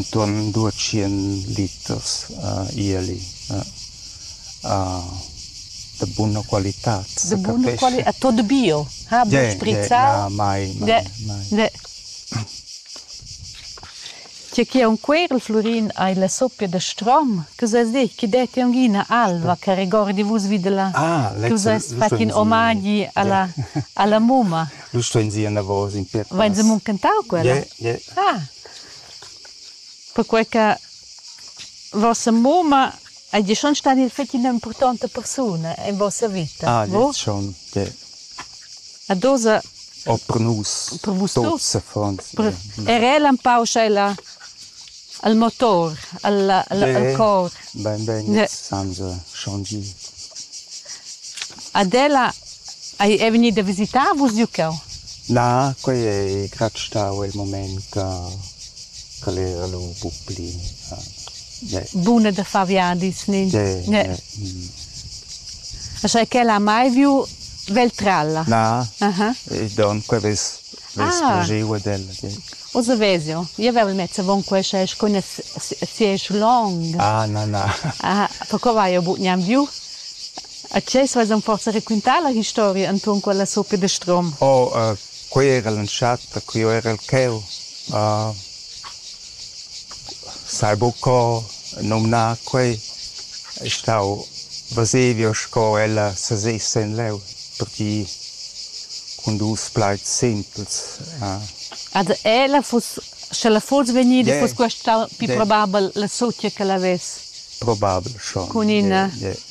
intuorn duotschient liters ieli da buna qualità. Da buna qualità, è tot bio? Ha buc sprizzau? Mai, mai, mai. Tge che un quer il Flurin ei la soppia da strom, che ses dich che detti ungina alva che regordi vus videla. Ah, tu seis fat in omagi alla alla mumma. Lu sto in sia navos in piet. Vein se muncentau quella? Ja, ja. Ah. perquei che vossa mumma hagi schon stada il fetg ina impurtonta persuna en vossa vita. Ah, vo? schon, che ad osa Oh, per nus. Per vus tuts. Per, er el empau sch'ella al motor, al, al, Beh, al cor. Ben, ben, jetzt haben sie schon die. Ad ella Ei ei vegnì da visitar Vus giu cheu? Na, quei ei gratg stau il mument ch'el era lu buc pli. Buna da far viadis, ni? Ne. Sche quel ha mai viu Veltralla? Na, don quei vess giu ad el. Oz vess jeu. Jeu vevel mez avon quei sche scuna sieisch long. Ah, na, na. Perquei vai jeu buc gnanc viu. A tgei vesan forsa raquintar la historia entuorn quella sopia de Strom? Oh, quei era l'entschatta, quei era il cheu. Uh, sai buc co numnar quei. È stau Vesevio sco ella sesess en leu, perché cun dus plaids simpels. Uh. Ad ella fuss, sche la fuss vegnida, yeah. fuss questa più yeah. probabel la sotia che la ves. Probabel schon. Con ina. Yeah, yeah.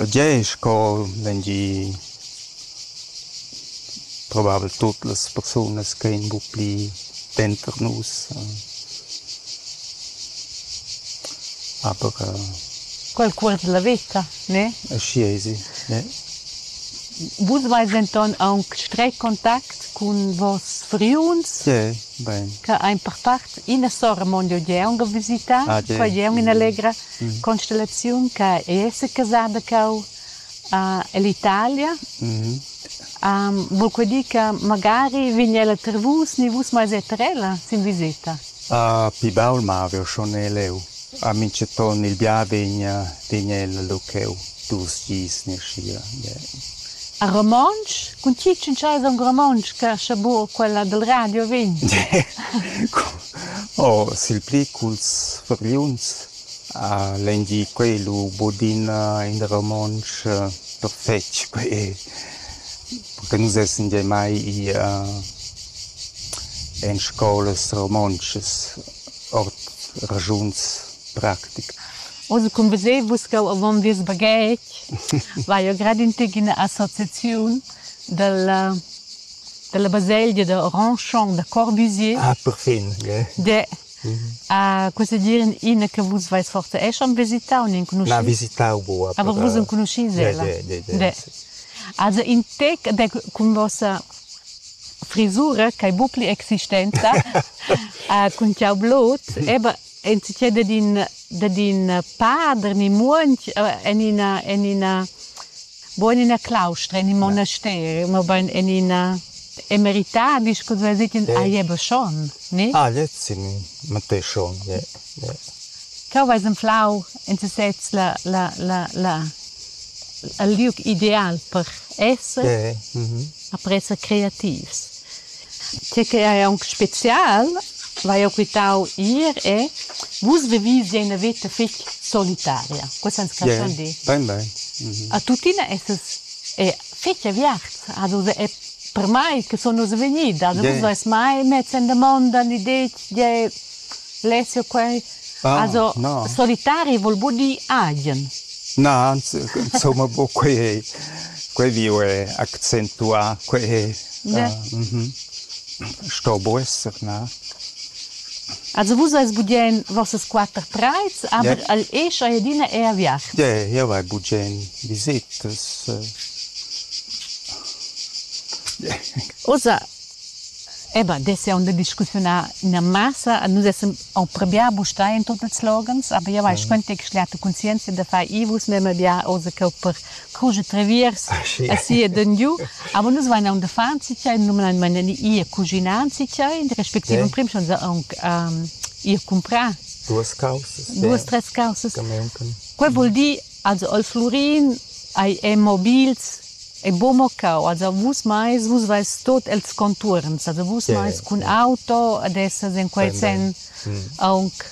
E tgei sco vegni probabel tut las persunas che ein buc pli denter nus. Aber Qualcuns dalla veta, ne? Aschia esi, ne. Vus veis denton aunc streg contact cun vos friuns? Ie. Bein. Que ein per part ina sora mon jeu jeu ga visità, ah, foi jeu ina allegra mm. constellaziun che ei secasada cau uh, ell'Italia. Mm-hmm. Um, vul que dir che magari vegn ella ter vus, ni vus mai eter ella sin visita? Uh, pi baul ma aveva schon leu. A minchaton il bia vegna tegna ella lu cheu dus dis naschiva. A romontsch? Cun tgi tschintschais aunc romontsch che ascha buca quella dil radio vegn? Oh, sil pli culs furgliuns. Lein dir quei lu bod ina in romontsch perfetg quei. Perché nus essan gia mai i en scolas romontschas. Ord raschuns practicas. Oz cun veser vus ch'jeu avon vies baghetg vai jeu grad in tec ina associaziun dalla dalla baselgia da Randchon da Corbusier. Ah, perfin, ge. De. Ah, cosa dir in ina che vus vais forsa esch am visitau, n'enconuschis? Na, visitau buca. Aber vus enconuschis ella? De, de, de. de. Also in tec de cun vossa frisura ch'ei buc pli existenta cun tgau blut eba enzatgei dad in dad in pader ni muonch en ina en ina buc en ina claustra en in monasteri mobein en ina emeritadi sco vess dit in ah jeba schon ni ah lez in matei schon ie ie Cheu veis anflau en sesez la la la la il liug ideal per esser, après esser creativs. Tge che ei aunc spezial, vai jeu quitau ir è vus vevisi ina veta fetg solitaria. Questo ans caschun dir. Bein, bein. A tuttina essas è fetg aviarts. Has uss è per mai che sun uss vegnidas. Vus veis mai mess en damonda l'idea tgei Alessio quei also no. solitari vul buca dir agen. Na, insomma buca quei ei. Quei viu è accentuà, quei è... Sto bu esser, na. Also vus eis bugen vossas quatter treids, aber el escha adina è a viacht. Ie, jeu vai bugen visitas. Ussa, Eba, dess jau da discussiunar ina massa. Nus essan approbià bustai en tut ils loghens, aber jau hai scuentà che schliata cunsienza da far i vus memia bia oz cheu per cuger treviers aschi ed engiu. Aber nus vein aunc d'uffants tgei, normalmein ir cuginar tgei, respektiv emprim schon aunc ir cumprar. Duas caussas. Duas, tres caussas. Quei vul dir, also al Flurin hai è mobils E bo mo cau, als vus meis, vus veis tot els contuorns, also vus yeah, meis cun yeah. auto ad essas in quei sen mm. aunc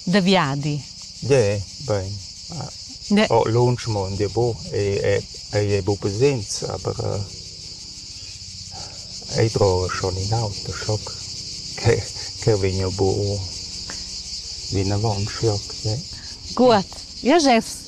da viadi. Yeah, bein. Yeah. Oh, lunsch mo dir bo, e ei è bu presents, aber äh, ei tro schon in auto shock che che vegno bu vinavon shock, yeah. Gut. Ja, Jeffs,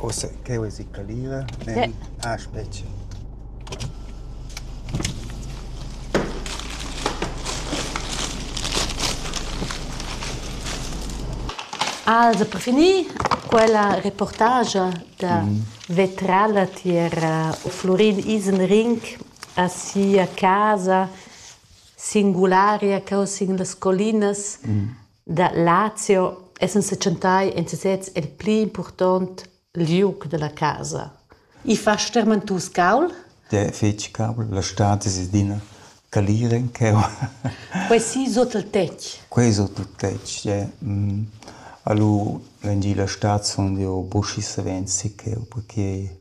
Ussa ch'jeu esi calira, Nel ha spetga. Also per finir quella reportagia da vetrala tier Flurin Isenring a sia casa singularia cheu sin las collinas Da Lazio essan setschentai en sesez el pli impurtont liug dalla casa. I fa stermentus caul? De fetg caul, la stad es adina calir en cheu. Quei si sut il tetg? Quei sut il tetg, ja. Mm. Alu vengi la stad sun jeu buschi savens si cheu, perché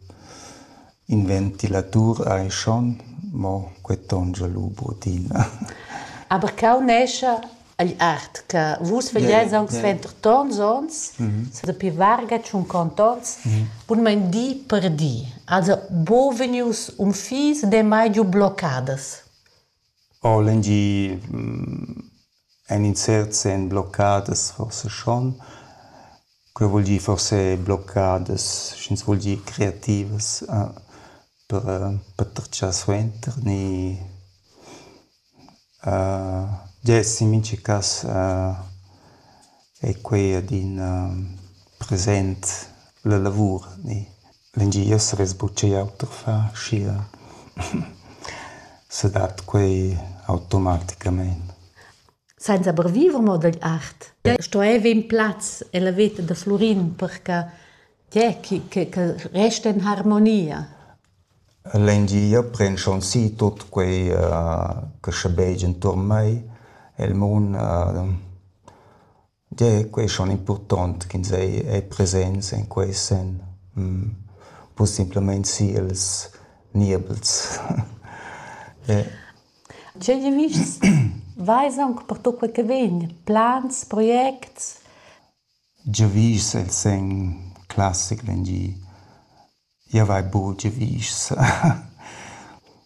In ventilatur ei schon, mo quei tongia lu buc'adina. Aber cheu nescha igl art che vus vegliais aunc suenter tons onns, sa dapi varga tschunquont onns, bunmein di per di. Also buca vegnius unfis, demai giu bloccadas. O l'engier en in cert sen bloccadas forsa schon. Quei vul dir forse bloccadas, sch'ins vul dir creativas, per per tratschar suenter ni gest in mintga cass ei quei adina present la lavur ni. Vegni essere sbucei auter far, schia se dat quei automaticamein. Senza per viver mo dagl art. Stueva in plaz ella veta da Flurin per che tge che che che resta in harmonia. L'engia pren schon si tut quei che sche beig enturn mei, el mun Tgei ei quei schon impurtont ch'ins ei, ei presents en quei senn, bu simplamein siels niebels. Tgei giavischs veis aunc pertucc quei che vegn? Plans, projects? Giavischs el senn classic vegn di Jeu vai buc giavischs.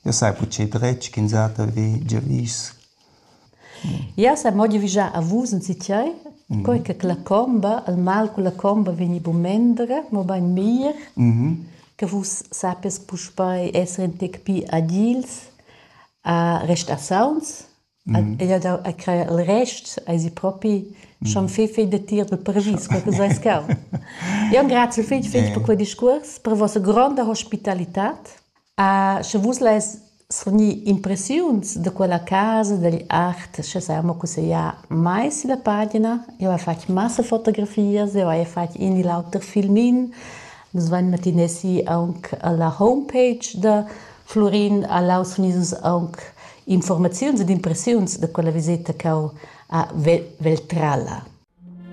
Jeu sai buc tgei dretg ch'insatge vi giavisch. Jau sai mo giavischar a vus enzitgei, quei che la comba, il mal cun la comba vegni buc mendra, mobein mir, che vus sappies puspei esser in tec pli agils, a restar sauns Ella dau a crajer il rest, eisi propi schon fei fei datier dal paravis, quei che seis cau. Eu engrazio fich fich per quel discuors, per vossa gronda hospitalitad. Sche vus lais svanir impressiuns da quella casa, dagl art, sche sai amo cussegliar mai sülla pagina. Eu hai fatg massa fotografias, eu haja fatg in e l'auter filmin. Nus vain matinè si aunc alla homepage da Flurin a Laus sun ius aunc informaziuns ed impressiuns da quella viseta ch'eu ha vel vel trala.